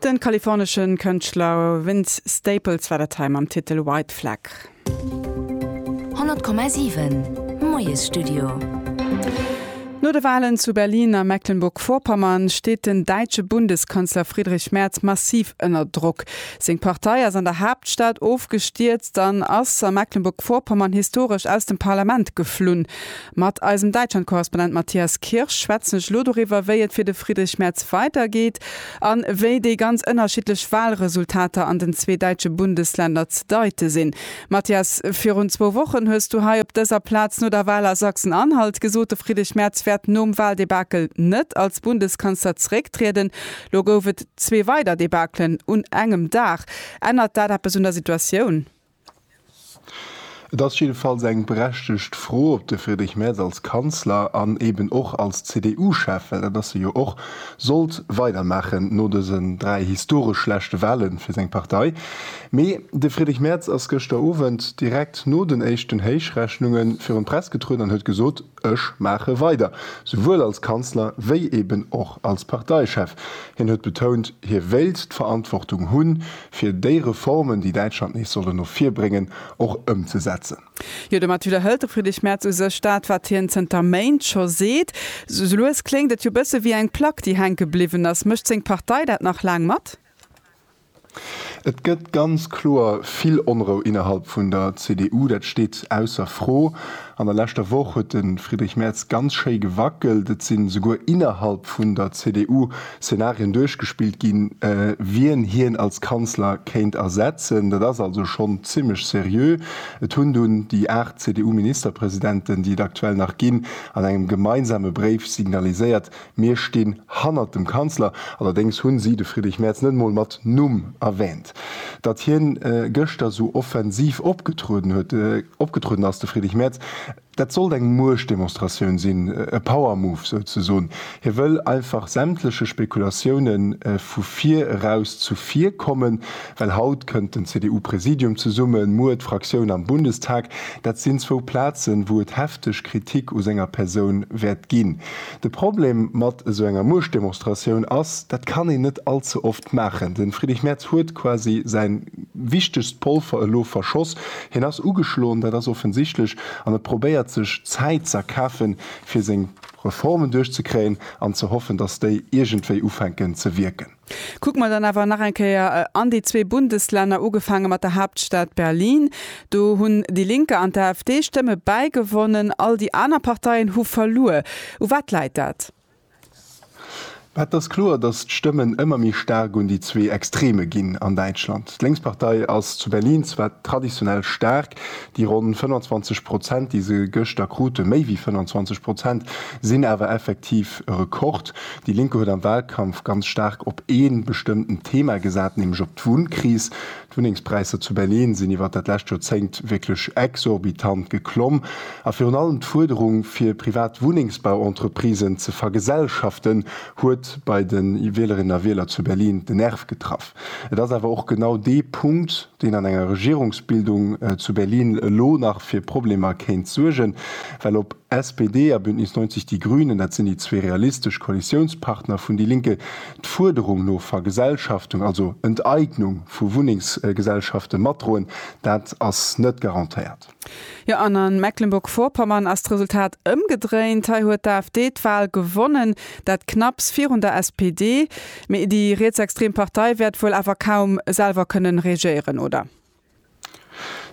De kalifornesche Kënschtler Vince Staples war dat hei mam Titel White Flag. 100,7 Moiesstudio. No de Walen zu Berlin a Mecklenburg-Vorpommern steet den däitsche Bundeskanzler Friedrich Merz massiv ënner Drock. Seng Partei ass an der Haaptstad ofgestierzt an ass a Mecklenburg-Vorpommern historesch aus dem Parlament geflunn. Mat eisem Däitschland-Korrespondent Matthias Kirsch schwätzen ech elo doriwwer, wéi et fir de Friedrich Merz weidergeet an wéi déi ganz ënnerschiddlech Walresultater an den zwee däitsche Bundesländer ze deite sinn. Matthias, virun zwou Wochen hues du hei op dëser Plaz no der Wal a Sachsen-Anhalt gesot, de Friedrich Merz wäert nom Waldebakel net als Bundeskanzler zerécktrieden. Lo gouf et zwee weider Debakelen un engem Dag. Ännert dat eppes un der Situatioun? Et ass jiddefalls eng berechtegt Fro, ob de Friedrich Merz als Kanzler an eben och als CDU-Chef, well dat ass e jo och, sollt weidermaachen no dësen dräi historesch schlechte Wahle fir seng Partei. Mee de Friedrich Merz ass gëschter Owend direkt no den éischten Héichrechnunge virun d'Press getrueden an huet gesot, Ech maache weider, souwuel als Kanzler wéi eben och als Parteichef. Hien huet betount, hie wéilt d'Verantwortung hunn, fir déi Reformen, déi Däitschland nees sollen no vir bréngen, och ëmzesetzen. Jo, domat widderhëlt de Friedrich Merz u sech dat, wat hien zënter Méint scho seet. Sou lues kléngt et jo bësse wéi eng Plack, déi hänke bliwwen ass. Mécht seng Partei dat nach laang mat? Et gëtt ganz kloer vill Onrou innerhalb vun der CDU, dat steet ausser Fro. An der leschter Woch huet de Friedrich Merz ganz schéi gewackelt. Et sinn esouguer innerhalb vun der CDU Szenarien duerchgespillt ginn, wien hien als Kanzler kéint ersetzen. Dat ass also schonn zimmlech seriö. Et hunn dunn déi 8 CDU-Ministerpresidenten, déi et aktuell nach ginn, an engem gemeinsame Bréif signaliséiert, Mir stinn hannert dem Kanzler. Allerdéngs hunn si de Friedrich Merz net mol mat Numm erwähnt. Datt hien gëschter sou offensiv opgetrueden huet, opgetrueden ass, de Friedrich Merz, dat sollt eng Muechtdemonstratioun sinn, e Power Move souzesoen. Hie wëll einfach sämtleche Spekulatioune vu vir eraus zu vir kommen, well haut kënnt den CDU-Präsidium zesummen, muer d'Fraktioun am Bundestag. Dat sinn zwou Plazen, wou et hefteg Kritik u senger Persoun wäert ginn. De Problem mat esou enger Muechtdemonstratioun ass, dat kann een net all ze oft maachen. De Friedrich Merz huet quasi säi wichtegst Polver elo verschoss. Hien ass ugeschloen, dat ass offensichtlech, an e probéiert sech Zäit ze erkafen, fir seng Reformen duerchzekréien an ze hoffen, datt déi iergendwéi ufänken ze wierken. Kucke mer dann awer nach eng Kéier an déi zwee Bundeslänner, ugefaange mat der Haaptstad Berlin. Do hunn déi Linke an d'AfD Stëmme bäigewonnen, all déi aner Parteien hu verluer. U wat läit dat? Et ass kloer, datt d'Stëmmen ëmmer méi staark un déi zwee Extreme ginn an Däitschland. D'Lénkspartei ass zu Berlin zwar traditionell staark, déi ronn 25 Prozent, déi se gëschter krute, méi wéi 25 Prozent, sinn awer effektiv e Rekord. Déi Lénk huet am Wahlkampf ganz staark op ee bestëmmten Thema gesat, nämlech op d'Wunnkris. D'Wunnengspräisser zu Berlin sinn iwwert dat lescht Joerzéngt wierklech exorbitant geklomm a virun allem d'Fuerderung, fir privat Wunnengsbauentreprisen ze vergesellschaften, huet bei de Wielerinnen a Wieler zu Berlin den Nerv getraff. Et ass awer och genau dee Punkt, deen an enger Regierungsbildung zu Berlin elo nach fir Problemer kéint suergen, well op SPD a Bündnis 90 Die Grünen, dat sinn déi zwee realistesch Koalitiounspartner vun déi Linke, d'Fuerderung no Vergesellschaftung, also Enteignung vu Wunnengsgesellschafte matdroen, dat ass net garantéiert. Jo, an a Mecklenburg-Vorpommern ass d'Resultat ëmgedréint. Hei huet d'AfD d'Wal gewonnen, dat knapps virun der SPD. Mee déi rietsextrem Partei wäert wuel awer kaum selwer kënnen regéieren, oder?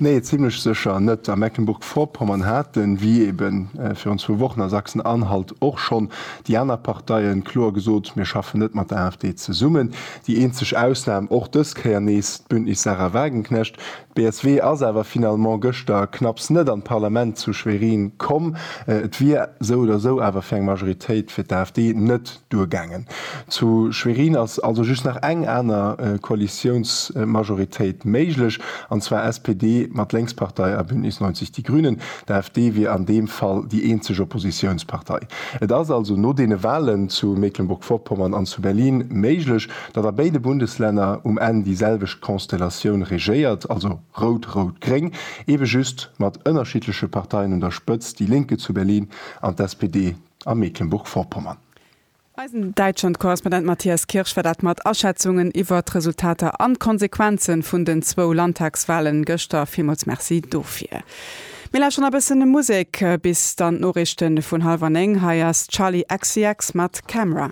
Nee, zimmlech sécher net. A Mecklenburg-Vorpommern haten, wéi ebe virun zwou Wochen a Sachsen-Anhalt och schonn, déi aner Parteien kloer gesot, Mir schaffen net mat der AfD zesummen. Déi eenzeg Ausnam, och dës Kéier nees d'Bündnis Sarah Wagenknecht, Csv ass awer finalement gëschter knapps net an d'Parlament zu Schwerin komm. Et wier esou oder esou awer fir eng Majoritéit fir d'AfD net duergaangen. Zu Schwerin ass also just nach eng aner Koalitiounsmajoritéit méiglech, an zwar SPD mat Lénkspartei a Bündnis 90 Die Grünen. D'AfD wier an deem Fall déi eenzeg Oppositiounspartei. Et ass also no deene Walen zu Mecklenburg-Vorpommern an zu Berlin méiglech, Datt a béide Bundeslänner um Enn déi selwecht Konstellatioun regéiert, also rout-rout-gréng, eebe just mat ënnerschiddleche Parteien un der Spëtzt, déi Linke zu Berlin an d'SPD a Mecklenburg-Vorpommern. Eisen Däitschland-Korrespondent Matthias Kirsch war dat mat Aschätzungen iwwer d'Resultater an d'Konsequenze vun den zwou Landtagswahlen gëschter. Villmools Merci dofir. Mir lauschteren nach e bëssen Musek bis dann d'Noriichten vun halwer 9. Hei ass Charli XCX mat Camera.